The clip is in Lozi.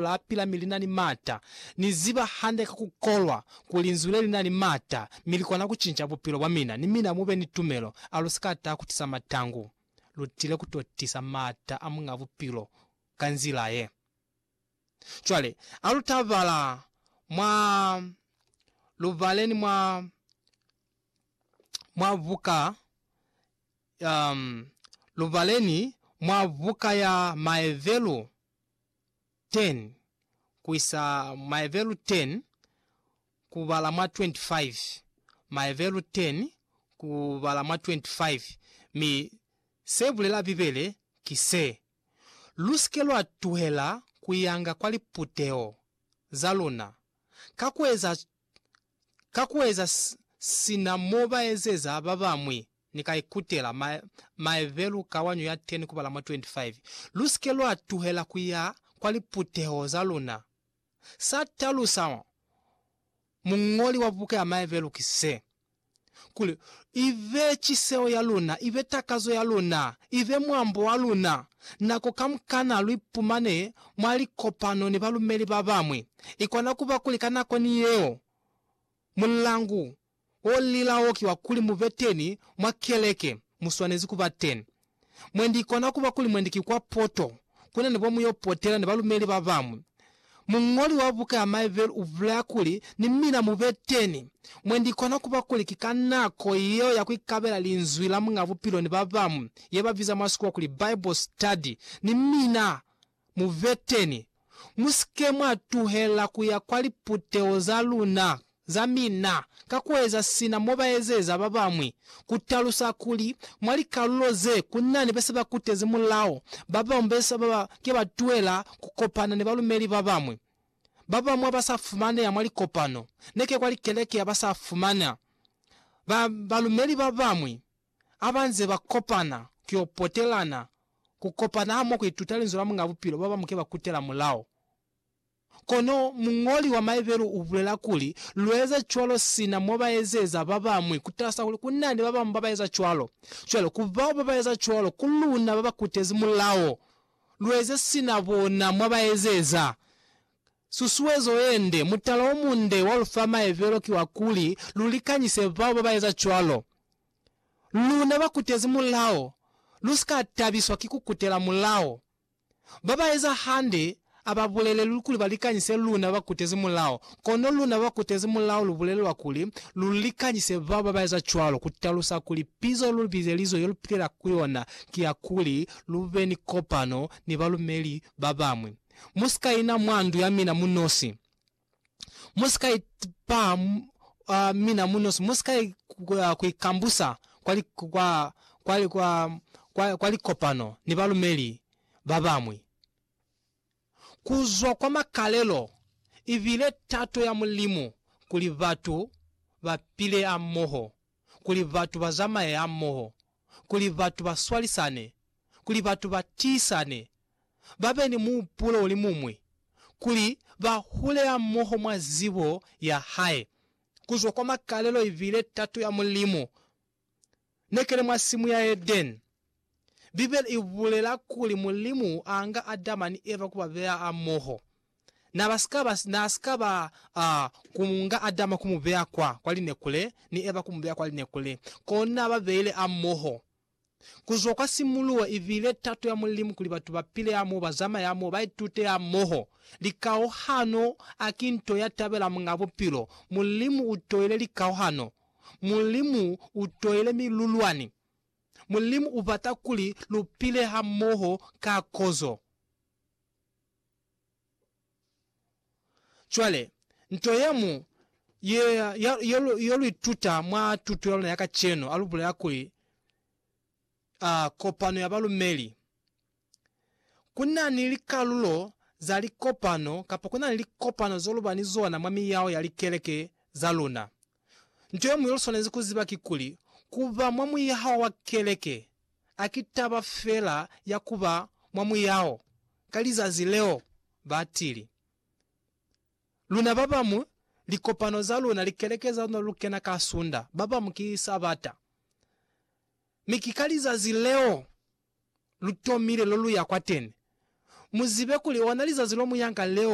la pila mi li na ni mata. Ni ziba hande ka ku kolwa ku Linzwi le li na ni mata, mi li kona ku cinca bupilo bwa mina, ni mina mu be ni tumelo. A lu si ka taha ku tisa matangu. Lu tile ku to tisa mata a Muñ'a Bupilo ka nzila ye. Cwale, a lu ta bala mwa, lu baleni mwa, mwa buka, um, lu baleni mwa buka ya Maevelu. 10 ku isa maebelu 10 ku bala mwa 25, maebelu 10 ku bala mwa 25, mi se bulela Bibele ki se, Lu si ke lwa tuhela ku yanga kwa liputeho za luna, ka ku eza Ka ku eza sina mo ba ezeza ba bañwi, ni ka ikutela maebelu ka wanyu ya 10 kubala mwa 25. Lu si ke lwa tuhela ku ya kwa liputeho za luna. Sa talusa muñoli wa buka ya maebelu ki se. kuli ibe ciseho ya luna, ibe takazo ya luna, ibe mwambo wa luna. Nako kamukana luipumane mwa likopano ni balumeli babañwi, ikona kuba kuli ka nako ni yeo mulandu olila oki wa kuli mube teni mwa keleke muswanezi kuba teni. Mwendi ikona kuba kuli mwendi ki kwa poto kuna nebo muyo potela ni balumeli babañwi. Muñoli wa buka ya Maeville ubulaya kuli, Ni mina mube teni. Mwendi ikona kuba kuli ki ka nako yeo ya kuikabela Linzwi la Muñ'a Bupilo ni babañwi, yebabiza mwa sikuwa kuli Bible study. Ni mina Muveteni, musike mwa tuhela kuya kwa liputeho za luna, za mina, ka kueza sina mobaezeza babañwi, kutalusa kuli mwa likalulo ze kunani bese bakutezi mulao, babañwi bese baba ke ba tuhela kukopana ni balumeli babañwi, babañwi aba sa fumaneha mwa likopano, neke kwa likeleke ya ba sa fumana, ba balumeli babañwi, ha ba nze ba kopana ku yo potelana, ku kopana hamoho ku ituta Linzwi la Muñ'a Bupilo, ba bañwi ke ba kutela mulao. Kono muñoli wa Maebelu u bulela kuli, Lu eza cwalo sina mo ba ezeza ba bañwi, ku talusa kuli ku na ni ba bañwi ba ba eza cwalo. Cwale, ku bao ba ba eza cwalo, ku luna ba ba kutezi mulao, lu eze sina bona mo ba ezeza. Susuezo ye nde, mutala o munde wa lu fa maebelo ki wa kuli lu likanyise bao ba ba eza cwalo. Luna ba kutezi mulao, lu si ka tabiswa ki ku kutela mulao. Ba ba eza hande a ba bulelelwi kuli ba likanyise luna ba kutezi mulao, kono luna ba kutezi mulao lu bulelelwa kuli lu likanyise bao ba ba eza cwalo, ku talusa kuli pizo lu bizelizwe ye lu pilela ku yona ki ya kuli lu be ni kopano ni balumeli ba bañwi. Mu si ka ina mwa ndu ya mina mu nosi. Mu si ka ipaha mwa mina mu nosi. Mu si ka ku ikambusa kwa likopano ni balumeli ba bañwi. Ku zwa kwa makalelo, i bile tato ya Mulimu kuli batu ba pile hamoho. kuli batu ba zamaye hamoho, kuli batu ba swalisane, kuli batu ba tiisane, ba be ni muhupulo o li muñwi, kuli ba hule hamoho mwa zibo ya hae, ku zwa kwa makalelo ibile tato ya Mulimu. Ne ke li mwa simu ya Edeni. Bibele i bulela kuli Mulimu a nga Adama ni Eva ku ba beya amoho. Na ba si ka ba, na si ka ba a ku nga Adama ku mu beya kwa, kwa linekule, ni Eva ku mu beya kwa linekule. Kona ba beile amoho ku zwa kwa simuluho. I bile tato ya Mulimu kuli batu ba pile amoho, ba zamaye amoho, ba itute amoho. Likauhano a ki nto ya tabela Muñ'a Bupilo. Mulimu u toile likauhano. Mulimu u toile milulwani. Mulimu u bata kuli lu pile hamoho ka kozo. Cwale, nto ye mu ye, ya, yo, lu, yo lu ituta mwa tuto ya luna ya kacenu, a lu bulela kuli, a, kopano ya balumeli. ku na ni likalulo za likopano kapa ku na ni likopano zo lu ba ni zona mwa miyao ya likeleke za luna. Nto ye ñwi yo lu swanezi ku ziba kikuli, ku ba mwa muyao wa keleke a ki taba fela ya ku ba mwa muyao ka lizazi leo ba tili. Luna ba bañwi, likopano za luna, likeleke za luna lu kena ka Sunda, ba bañwi ki Sabata. Mi ki ka lizazi leo! lu tomile lo lu ya kwateni. Mu zibe kuli ona lizazi lo mu yanga leo